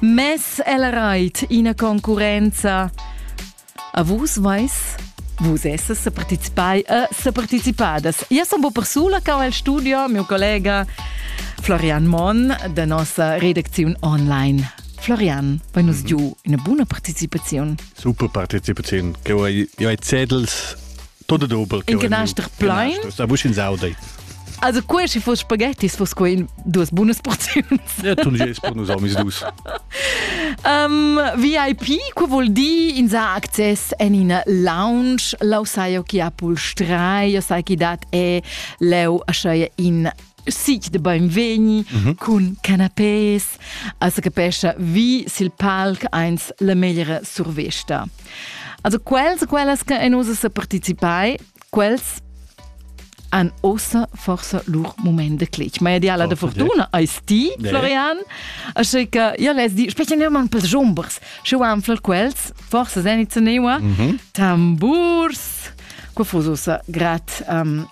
Mess el reit ina concurrenza. A vus vais Vus esses se participai e se participadas. Io sono un po' persula cau al studio, mio collega Florian Mon da nossa redakziun online. Florian, vai nos mhm. giu una buna partecipazione. Super partecipazione. Che io ai zetels Todo dobel. In canaster plain? A vusch in saudai. Also quel si foss spaghettis foss quei in duas bunas porziuns. Ja, tu gest per nus amis dus. Um, VIP, que vuol dir in sa access en in lounge, lau sai jo chi ha pulstrai, jo sai chi dat è leu a schei in Sic de beinvegni mhm. cun canapés, als capescha vi sil palc eins la meglra survesta. Also quels e quellas che en usa sa participai, quels han ossa forsa lur moment de clic. Ma ideala oh, de fortuna eis ti, Florian, aschi che ja les di, specie ne man per jumbers, sche wan fl quels, forsa zeniz neua, mhm. tamburs, quo fusosa grat um,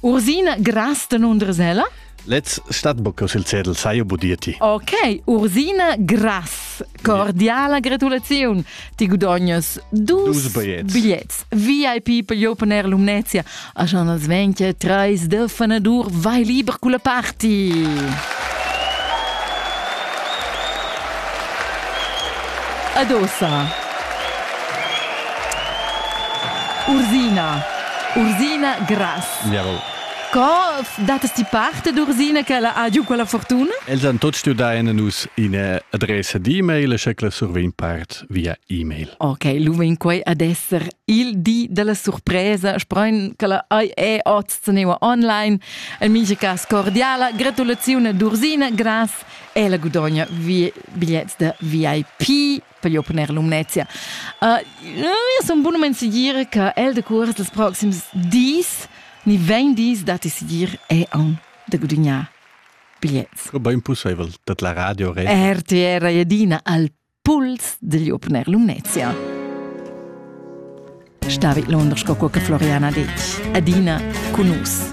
Ursina Gras danundres ella? Let's stat bocca sil cedel sai buditi. Ok, Ursina Gras, cordiala gratulaziun. Ti gudognas dus, bigliets. bigliets. VIP per Open Air Lumnezia. A schon als 20, trais de fanadur, vai liber culla party. Adossa. Ursina. Ursina Grass. Jawohl. Co datas ti parte d'Ursina che ella ha giu quella fortuna? Els han tuts stuiu dar a nus ina adressa d'e-mail e sche quella survegn part via e-mail. Ok, lu vegn quei ad esser il di della surpresa. Sprein che la ai è oz teneua online. En mincha cas cordiala gratulazione d'Ursina Grass e la gudogna vi bigliets da VIP voglio poner Lumnezia. Uh, io sono buono men sicur che el de curs dels proxims dis, ni vegn dis dati sicur è on da gudignare bigliets. Ba impossibel dat la radio re. RTR Jedina al puls degli opener Lumnezia. Stavi Londra sco qualche Floriana detg. Adina con us.